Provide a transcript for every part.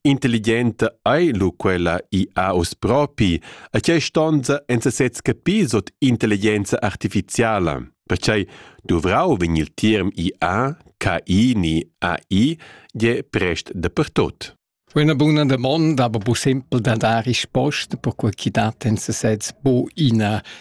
Intelligenta ei lu quella i ha uss propi, a tgei stonza en sesez capir sut intelligenza artificiala. Pertgei duvrau vegn il term IA, KI ni AI je prest dapertut. Una buna domanda, aber bu simpel da dar risposta per quel chi dat en sesez bu ina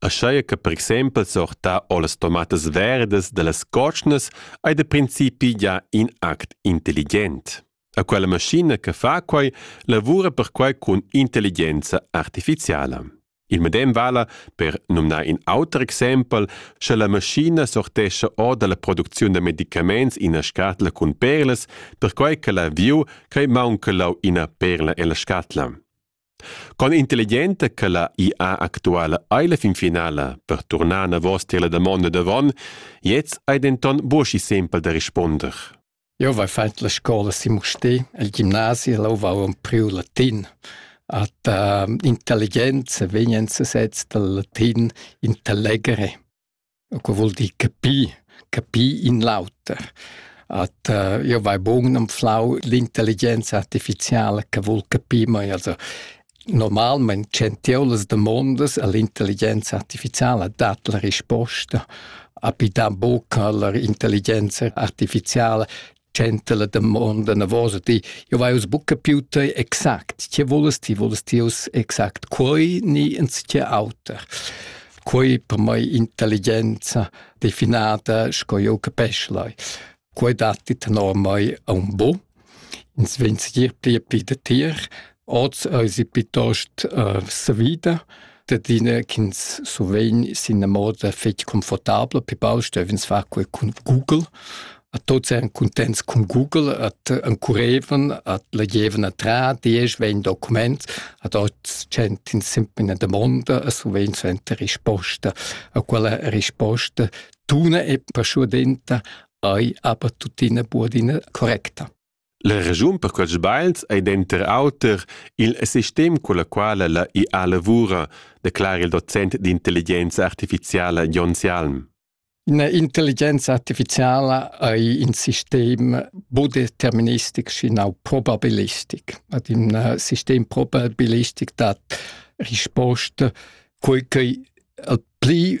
aschia che per exempel sortar o las tomatas verdas dallas cotschnas ei da principi gia in act intelligent. A quella maschina che fa quei lavura perquei cun intelligenza artificiala. Il medem vala per numnar in auter exempel, sche la maschina sortescha or dalla producziun da medicaments ina scatla cun perlas, perquai che la viu crei maunca lau ina perla ella scatla. Con intelligenta che la IA actuala ei la fin finala per turnar anavos tier la damonda davon, gliez ei denton buca sempel da risponder. Jeu vai fatg la scola si Mustè, el gimnasi, e leu vau empriu latin. At uh, intelligenza vegn en sesez dal latin intellegere. Co vul dir capir? Capir in l'auter. At io vai bun anflau l'intelligenza artificiala che vul capir, ma also normalmaing tschentieu las damondas a l'intelligenza artificiala, dat la risposta, a pi dà buca la intelligenza artificiala tschenta la damonda navosa ti jo vai us buca più te exact che volles ti volles ti us exact quei ni ins che auter quei per mai intelligenza definata sco jo capesc lai quei datti tenor mai a un bo ins vegn segir pli e pli da tier Oz eisi piuttost uh, savida dadina ch'ins survegn sin la moda fetg confortabla, pi baul stevens far quei cun Google. A tots eran contents cun Google, at encurevan, at legevan a tra diesch, vegn document, ad oz gent in simpel domanda e survegn suenter risposta. A quella risposta tuna e perschuadenta ei aber tuttina buadina correcta. La raschun per quels sbagls ei denter auter igl sistem culla quala la IA lavura, declara il docent d'intelligenza artificiala Jon Sialm. Intelligenza artificiala ei in sistem budeterministic schinau probabilistic. Ad in uh, sistem probabilistic dat risposta quei che al pli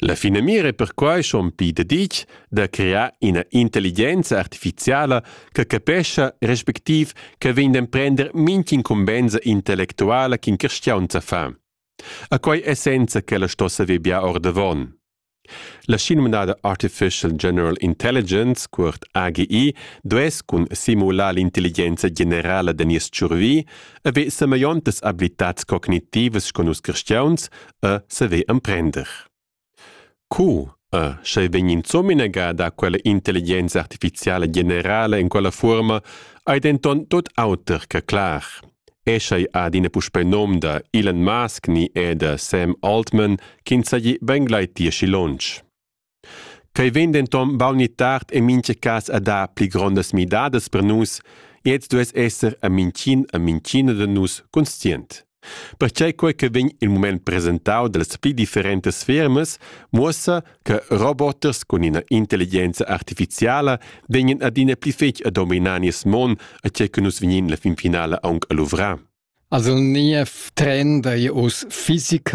La finamira è perquai schon pli daditg da crear ina intelligenza artifiziala che capescha respectiv che vegn d'emprender mintg'incumbensa intellectuala ch'in cristiaun fa. A quai essenza ch'ella sto saver bia ordavon. La schinomnada Artificial General Intelligence, cuort AGI, duess cun simular l'intelligenza generala da nies tschurvi haver sameiontas abilitats cognitivas sco nus cristiauns e saver emprender. Co e sche vegn insomnega da quella intelligenza artificiala generala in quella forma ei denton tot auter che clar. Eschei adina puspei nom da Elon Musk ni e da Sam Altman ch'ins hagi ben gleiti aschi lunsch. Quei vegn denton baul ni tard en mintga cas a dar pli grondas midadas per nus e ins duess esser a mintgin a mintgina da nus conscient. Perquei quei che vegn il mument presentau dallas pli differentas fermas muossa che roboters cun ina intelligenza artificiala vegnan adina pli fetg a dominar nies mon a tgei che nus vegnin la finfinala aunc a luvrar. Also niev trend ei uss physical